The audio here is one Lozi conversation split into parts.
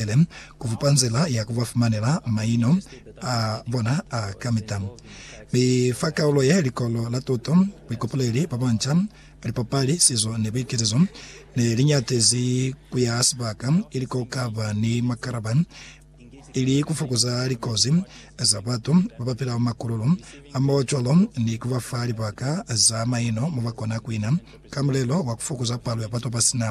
Isilaele ku fupa nzila ya ku ba fumanela maino a bona a kamita. Mi fa kaulo ye, likolo la tuto, buikopoleli bwa banca, lipapali, sizo, ni buiketiso ne li nyatezi ku ya sibaka ili ko ka ba ni makalaba ili ku fokoza likozi za batu ba ba pila makululu a mo cwalo ni ku ba fa libaka za maino mo ba kona ku ina ka mulelo wa ku fokoza palo ya batu ba si na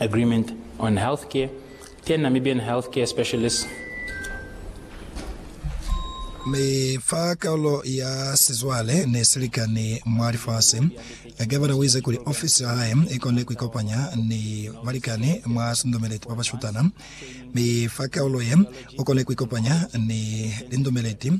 Agreement on Health Care, ten Namibian Health Care Specialists. Mi fa kalulo ya sizwale ne si likani mwa lifasi, Gavana uize kuli ofisi ya hae ikone kuikopanya ni balikani mwa sindumeleti babashutana, mi fa kalulo ye, ukone kuikopanya ni lindumeleti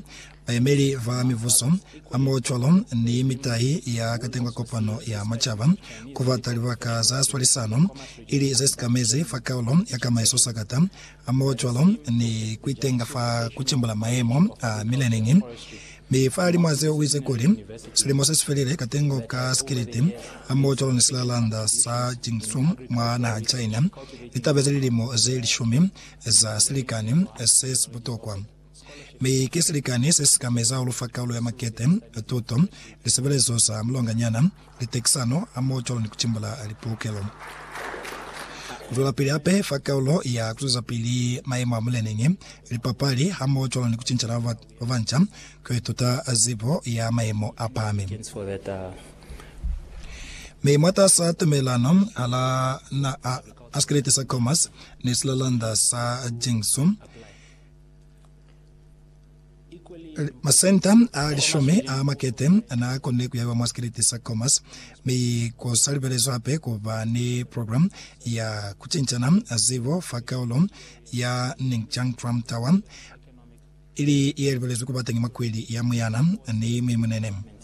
Bayemeli ba mibuso, ba maocwalo, ni mitahi ya katengwa kopano ya macaba, ku bata libaka za swalisano, ili ze sikamezi fa kaulo ya kamaiso sakata, a maocwalo, ni ku itenga fa ku cimbula mayemo a mileneñi. Mi fahalimw'a zeo u ize kuli, Silimo se si felile, katengo ka sikiliti, a maocwalo ni silalanda sa Jingsu mwa naha China, li tabezi lilimo ze lishumi za silikani se si butokwa. Mi ki silikani se si ka meza ulu fa kaulo ya makete, tuto, lisebelezo za mulonganyana, litekisano, hamoho-cwalo ni kutimbula lipulukelo. Kuzwelapili hape fa kaulo ya kuzwezapili mayemo a muleneñi, lipapali, hamoho-cwalo ni kucincana ba banca, kuituta zibo ya mayemo a pahami. Mi mwatasaa tumelelano hala naha, Askiliti sa Comas ni Silalanda sa Jiangsu, Masenta a lishumi a makete na konile kuyaiwa mwa sikiliti sa Khomas, mi ku sa libelezwi hape ku ba ni program ya ku cincana zibo fa kaulo ya Ningjiang Trump Tower, ili ye libelezwi ku ba teñi mwa kwili ya muyana ni mwimunene.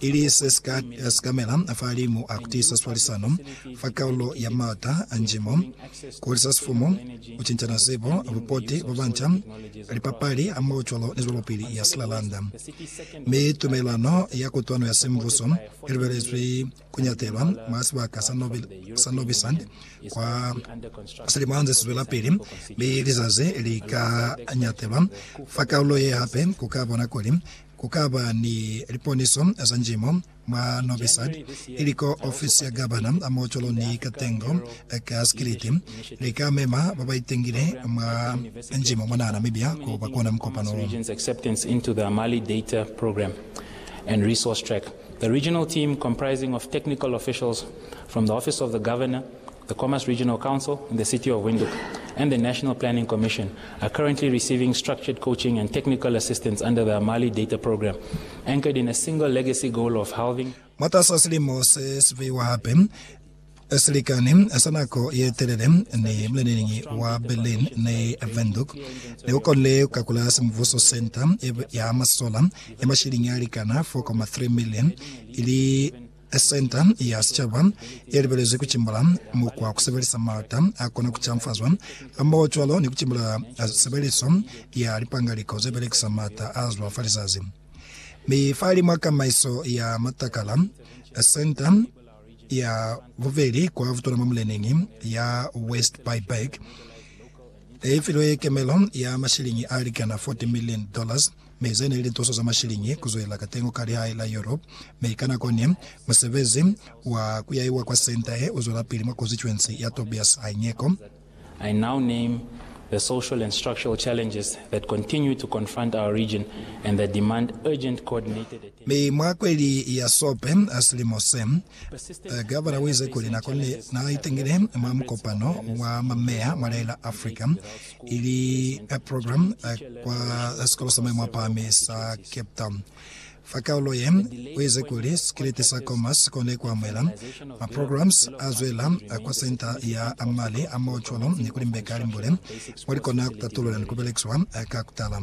ili se si ka sikamela fahalimu a ku tiisa swalisano fa kaulo ya maata a njimo, ku hulisa sifumu, ku cincana zibo, bupoti bwa banca, lipapali hamohocwalo ni zwelopili ya silalanda. Mi tumelelano ya kutwano ya sembuso i lubelezwi ku nyatelwa mwa sibaka sa Nobi, sa Nobi Sand kwa silimana ze si zwelapili, mi lizazi li ka nyatelwa fa kaulo ye hape ku ka bona kuli Ku ka ba ni liponiso za njimo mwa Novi Sad, ili ko ofisi ya gabana mo cwalo ni ka tengo ka sikiliti. Li ka mema ba ba itengile mwa njimo mona Namibia ku ba kona mukopano wo. The Khomas Regional Council in the City of Windhoek and the National Planning Commission are currently receiving structured coaching and technical assistance under the Amali Data Programme, anchored in a single legacy goal of halving Mwatas'a silimo se si beiwa hape, silikani sa nako ye telele ni muleneñi wa Berlin ni Windhoek ne ku konile ku kakula simubuso senta ya masola ya mashiliñi a likana 4.3 million ili Senta ya Sicaba ye libelezwi ku cimbula mukwa wa ku sebelisa malata a kona ku canfazwa, hamohocwalo ni ku cimbula sebeliso ya lipangaliko ze belekisa malata a zwa fa lizazi. Mi fahalimw'a kamaiso ya matakala, Senta ya Bubeli kwa Butona mwa Muleneñi ya West Buyberg i filwe kemelo ya mashiliñi a likana 40 milioni dollars Mi ze ne li lituso za mashiliñi ku zwelela ka tengo ka lihae la Europe, mi ka nako ne, musebezi wa ku yaiwa kwa senta ye u zwelapili mwa konsituensi ya Tobias Haineko. I now name the social and structural challenges that continue to confront our region and that demand urgent coordinated attention. Mi mwa kweli ya Sope a silimo se, Gavana uize kuli nako ne naitangile mwa mukopano wa mameya mwa lia la Africa ili ka program kwa sikolo sa maimo apahami sa Cape Town. Fa kaulo ye, uize kuli sikiliti sa Comas kone kuamuhela ma programs azwela kwa Centre ya Mali a Mao Cwalo ni kulimbeka limbule mo likona kutatulula ni kubelekiwa ka kutala.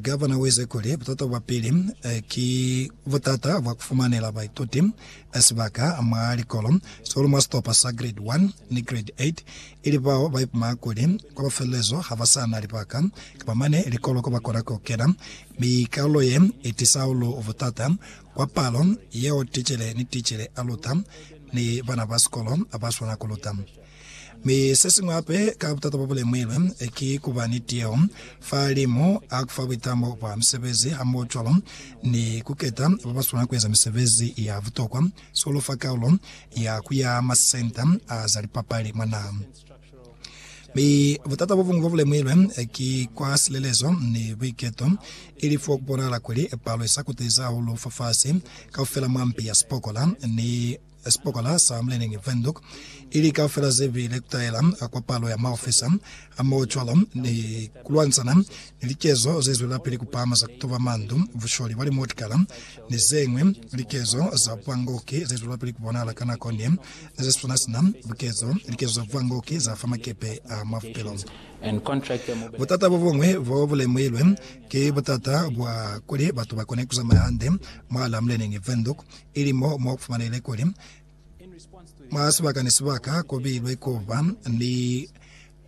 Gavana u ize kuli, Butata bwa pili ki butata bwa ku fumanela baituti sibaka mwa likolo, sihulu mwa sitopa sa Grade 1 ni Grade 8, ili bao ba ipuma kuli kwa mafelelezo ha ba sa na libaka kapa mane likolo ko ba kona ku kena, mi kalulo ye i tisa hahulu butata kwa palo yeo ticele ni ticele a luta ni bana ba sikolo ba swana ku luta. Mi sesiñwi hape ka butata bo bulemuilwe ki kuba ni tiyeho fa limu a kufa buitamo bwa misebezi hamohocwalo ni kuketa babaswana kueza misebezi ya butokwa, sikolo fa kaulo ya kuya masenta a za lipapali mwa naha. Mi butata bobuñwi bobulemuilwe ki kwa silelezo ni buiketo, ili fo kubonahala kuli palo isa kutezi hahulu fafasi kaufela mwa mpi ya sipokola ni ya sibokwana sa Mlining Windhoek i li kaufela ze bile ku taela a kopalo ya maofisa a mocwalo ni ku lwantsana ni likezo ze zwelapili ku pahama za ku tuba mandu, busholi bwa limotikala, ni ze ñwi likezo za buangoki ze zwelapili ku bonahala ka nako ne ni ze swana sina bukezo likezo za buangoki za fa makepe a mwa bupilo. Butata bo buñwi bo bu lemuhilwe ki butata bwa kuli batu ba kone ku zamaya hande mwahal'a Mlining Windhoek ili mo mwa kufumanele kuli mwa sibaka ni sibaka kubilwe kuba ni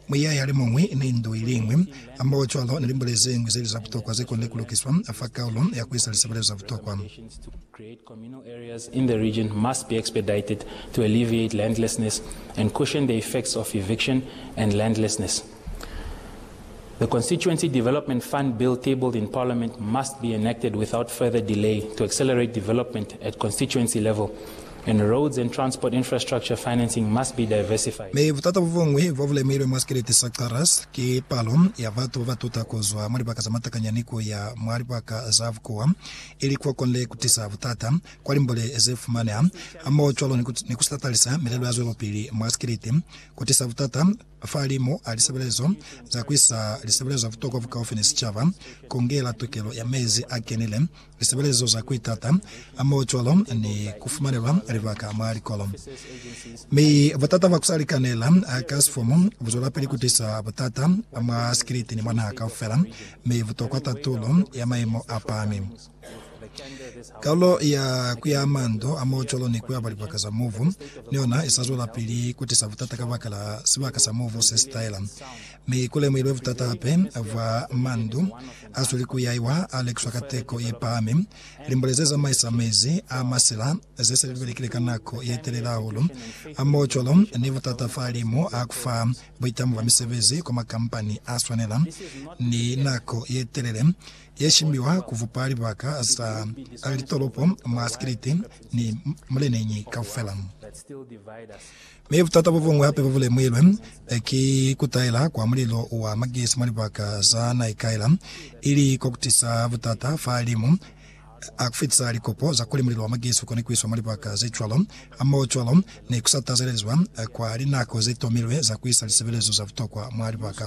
muyaya limuñwi ni ndu iliñwi. Hamohocwalo ni limbule zeñwi zeli za butokwa zekonile kulukiswa fa kaulo ya kuisa lisebelezo za butokwa. The Constituency Development Fund Bill tabled in Parliament must be enacted without further delay to accelerate development at constituency level and roads and transport infrastructure financing must be diversified. Mi butata bubuñwi bobulemailwe mwa sikeleti sa Xarras ki palo ya batu babatuta kuzwa mwa libaka zamatakanyani kuya mwa libaka za bukuwa, ili kuokonile kutisa butata kwa limbole zefumaneha hamoho cwalo ni kusilatalisa milelo ya zwelopili mwa sikeleti, kutisa butata Fahalimu a lisebelezo za kuisa lisebelezo za butokwa bukaufi ni sicaba, kongela tokelo ya mezi a kenile, lisebelezo za kuitata, hamohocwalo ni kufumanelwa libaka mwa likolo. Mi butata bwa kusa likanela ka sifomu buzwelapili kutisa butata mwa sikiliti ni mwa naha kaufela, mi butokwa tatulo ya maimo apahami. Kalulo ya ku ya mando a mocolo ni ku ya kwa libaka za mubu ni yona i sa zwelapili ku tisa butata kabakala sibaka sa mubu se si taela, mi ku lemuhilwe butata hape bwa mando a sweli ku yaiwa a lekiswa ka teko ye pahami. Limbole ze zamaisa mezi a masila ze se li belekile ka nako ye telele hahulu a mocolo ni butata fahalimu a ku fa buitamo bwa misebezi kwa makampani a swanela ni nako ye telele ye shimiwa ku vupa libaka za litolopo mwa sikiliti ni muleneñi kaufela. Mi butata bo buñwi hape bo bu lemuhilwe ki ku taela kwa mulilo wa magesi mwa libaka za naikaela, ili ko ku tisa butata fa limu a ku fitisa likopo za kuli mulilo wa magesi u kone ku iswa mwa libaka ze cwalo, hamoho cwalo ni ku sa tazelezwa kwa linako ze tomilwe za ku isa lisebelezo za butokwa mwa libaka.